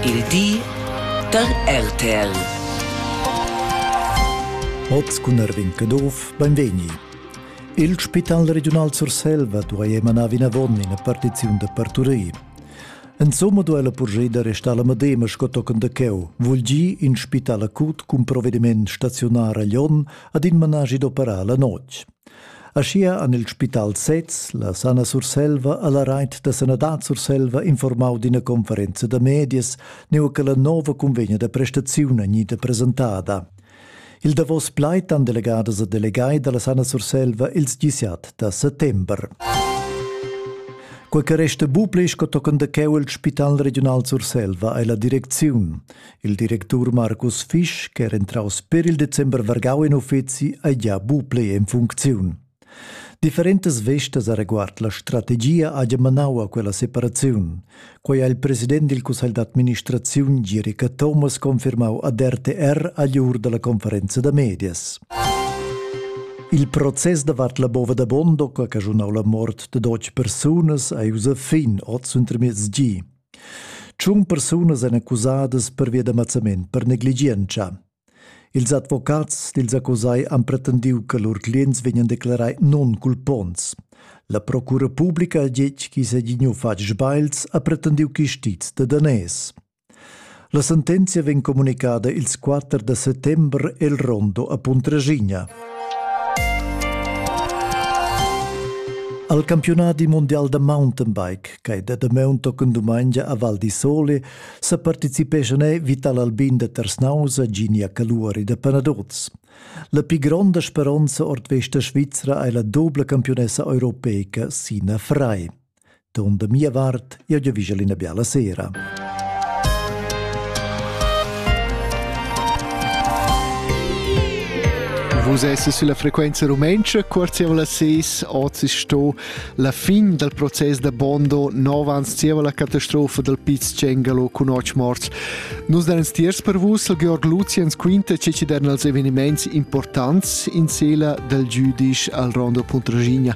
Il di da RTL. Oz cun Erwin Caduff, benvegni. Il Spital Regiunal Surselva duai emanar vinavon ina partiziun da parturir. Insomma duai la purgia da restar la Madema sco tochen da cheu, vul gi in spital acut cun provediment staziunar a Lyon ad in managi d'operar la notg. Aschia han il spital sez, la Sana Surselva e la Reit da sanadad Surselva informau d'ina conferenza da medias nua che la nova cunvegna da prestaziun gnita presentada. Il davos plaid han delegadas e delegai dalla Sana Surselva ils disiat da settember. Quei che resta buca sco tochen da cheu il Spital regional Surselva ei la direcziun. Il directur Markus Fisch, ch'era entraus per il december vargau in uffeci, ei gia bu plei en funcziun. Differentas vestas areguard la strategia haja manau a quella separaziun. Quei ha il president dil cussegl d'administraziun Girica Thomas confirmau ad RTR agl ur dalla conferenza da medias. Il process davart la bova da Bondo, che ha caschunau la mort de dotg persunas, ei ussa fin oz untermiez gi. Tschun persunas èn accusadas pervia da mazzament per negligientscha. Ils advocats dils accusai han pretendiu che lur clients vegnan declarai non-culponts. La procura publica ha detg ch'i segli fatg sbagls ha pretendiu chistiz da daners. La sentenzia vegn communicada ils 4 da settembre el rondo a Puntraschigna. Al campionati mondial da mountainbike, che è da maun tochen dumengia a Val di Sole, sa participeschan Vital Albin da Tersnausa, Ginia Caluari da Panadoz. La più grande speranza ord vesta svizra è la doble campionessa europeica Sina Frei. Duront da mia vart, jeu giavischel ina biala sera. Vus esses sulla frequenza rumentscha, cuorzievla ses, oz sto la fin dal proces da Bondo 9 ans zieva la catastrofa dal Piz Cengalo cun otg morts. Nus dan tiers per vus il Georg Luziens quinta che ci dan als eveniments importants in sela dal giudisch al Rondo Puntragigna.